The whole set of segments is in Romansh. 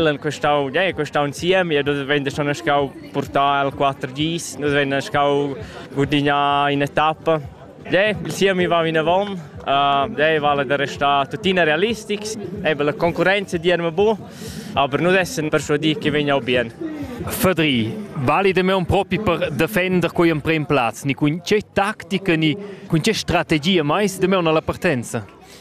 l'han questau, ja, questau insieme e nus vein schon schau portar al 4Gs, nus vein schau gudignare in etappa. Ja, il siemi va vinavon, uh, ja, vale da restare tuttina realistics, eben la concorrenza diremo bu, aber nus essen persuadì che vegna bien. Fadri, valide me un propi per defender quei emprem plaz, ni cun che tattica ni cun che strategia mai de me una la partenza?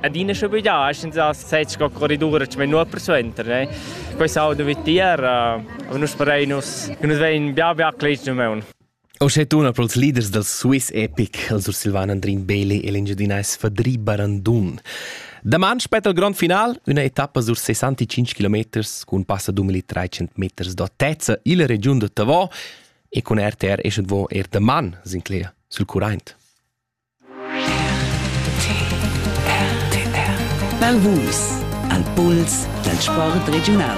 adina schon biglià, senza sez sco corridura, che non persuenter, ne? Questo auto vi tier, uh, nus parei nus, nus vein bia bia clics nu meun. O sche tuna pro els leaders dal Swiss Epic, els Ursilvan Andrin Bele e l'engiadinais Fadri Barandun. Daman spetta il grond final, una etappa sur 65 km cun passa 2300 meters d'autezza illa regiun de Tavò e con RTR esce vo er daman, Sinclair, sul current. Bel Vus, al puls dal sport regiunal.